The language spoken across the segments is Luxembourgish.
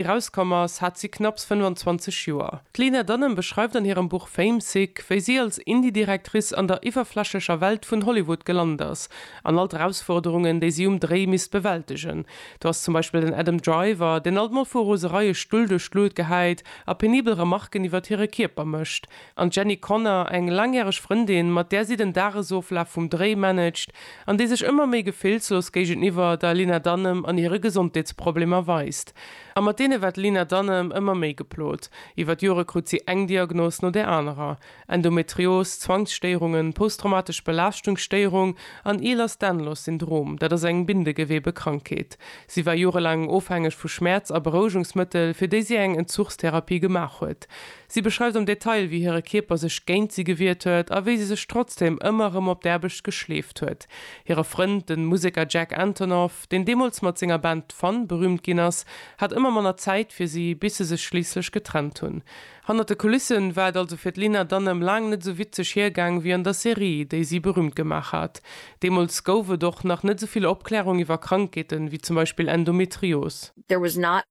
erauskomm ass, hat si knapps 25 Joer. D'Lena Dunham beschreift an hirem Buch Famesick, wéi si als Indie-Directrice an der iwwerflächlecher Welt vun Hollywood gelant ass an all d'Erausforderungen, déi si um Dréi misst bewältegen. Do ass zum Beispill den Adam Driver, deen alt mol vu Rosereie Stull duerch d'Luut gehäit a penibel Remarken iwwert hire Kierper mécht. An d'Jenny Connor, eng laangjäreg Frëndin, mat där si den Dagesoflaf vum Dréi managt an déi sech ëmmer méi gefillslos géigeniwwer der Lena Dunham an hire Gesondheetsproblemer weist. A mat deene war d'Lena Dunham ëmmer méi geplot. Iwwer d'Jore krut si eng Diagnos no där anerer, Endometrios, Zwangsstéierungen, posttraumatesch Belaaschtungsstéierung an Ehlers-Danlos Syndrom, dat ass eng Bindegewebekrankheet. Si war jorelaang ofhängeg vu Schmäerz a Berouegungsmëttel, fir déi si eng Entzuchstherapie gemaach huet. Si beschreift am Detail, wéi hire Kierper sech géint si gewiert huet a wéi si sech trotzdeem ëmmer erëm op d'Aarbecht geschleeft huet. Hire Frënd, de Museker Jack Antonoff, deen deemools mat senger Band Fun berüümt ginn ass, hat ëmmer manner Zäit fir si, bis se sech schliisslech getrennt hunn. Hannert de Kulissen war et also fir d'Lena Dunham laang net esou witzeg hiergaang wéi an der Serie, déi si berüümt gemaach hat. Deemools gouf et och nach net esou vill Opklärung iwwer Krankheeten, wéi zum Beispill Endometrios. There was not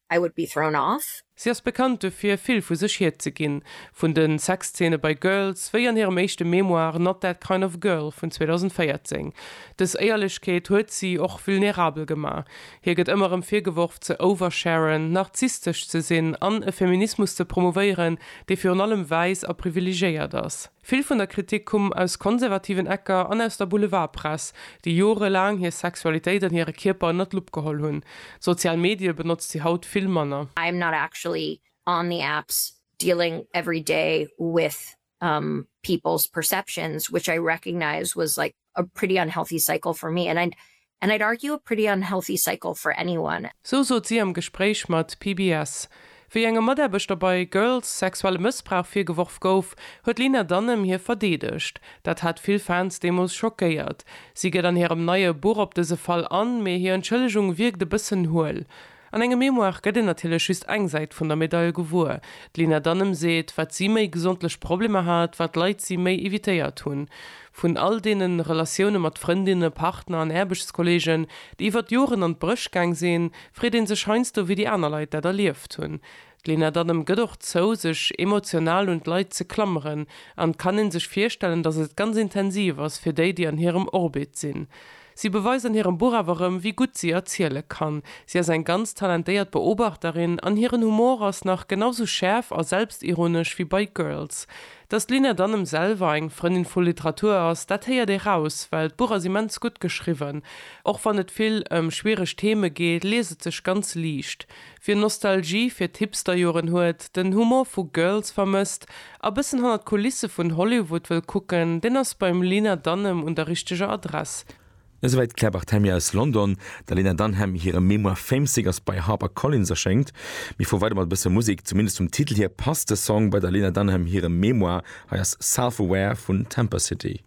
I would be thrown off. Si ass bekannt dofir, vill vu sech hierzeginn. Vun de Sexzeene bei Girls, wéi an hirem éischte Memoir Not That Kind of Girl vun 2014. Dës Éierlechkeet huet si och vulnerabel gemaach. Hir gëtt ëmmer erëm virgeworf, ze oversharen, narzisstesch ze sinn an e Feminismus ze promouvéieren, dee virun allem wäiss a privilegéiert ass. Vill vun der Kritik kumm aus konservativen Ecker an aus der Boulevardpress, déi jorelaang hir Sexualitéit an hire Kierper ënnert d'Lupp geholl hunn. D'sozial Medie benotzt si haut vill manner. I'm not actually on the apps dealing every day with people's perceptions, which I recognize was like A pretty unhealthy cycle for me and and I'd argue a pretty unhealthy cycle for anyone. Sou sot si am Gespréich mat PBS. Wéi engem Mataarbechter bei Girls sexuelle Mëssbrauch virgeworf gouf, huet d'Lena Dunham hie verdeedegt. Dat hat vill Fans deemools schockéiert. Si geet an hirem neie Buch op dëse Fall an, mee hir Entschëllegung wierkt e bëssen huel. An engem Memoire gëtt een natierlech just eng Säit vun der Medail gewuer. D'Lina Danem seet, wat si méi gesondlech Problemer hat, wat Leit si méi evitéiert hunn. Vun all deene Relatioune mat Frëndinne, Partner an Aarbechtskolleegen, déi iwwert Joren an d'Bréch gaang sinn, freet ee sech heiansdo, wéi déi aner Leit dat erlieft hunn. D'Lena Dunham gëtt och zou, sech emotional un d'Leit ze klammeren, an et kann een sech virstellen, datt et ganz intensiv ass fir déi, déi an hirem Orbit sinn. Si beweist an hirem Buch awer erëm, wéi gutt si erziele kann. Si ass eng ganz talentéiert Beobachterin, an hiren Humor ass nach genau sou schäerf a selbstironesch wéi bei Girls. Datt d'Lena Dunham selwer eng Frëndin vu Literatur ass, dat héiert ee raus, well d'Buch ass immens gutt geschriwwen. Och wann et vill ëm schwiereg Theme geet, liest et sech ganz liicht. Wien Nostalgie fir d'Hipsterjoren huet, den Humor vu Girls vermësst a bëssen hannert d'Kulisse vun Hollywood wëll kucken, deen ass beim Lena Dunham un der richteger Adress. Esouwäit d'Claire Barthemy aus London. Der Lena Dunham hire Memoir Famesick ass bei Harper Collins erschéngt. Mir fuere weider mat e bësse Musek. Zumindest vum Titel hier passt de Song bei der Lena Dunham hirem Memoir. Hei ass Self Aware vun Temper City.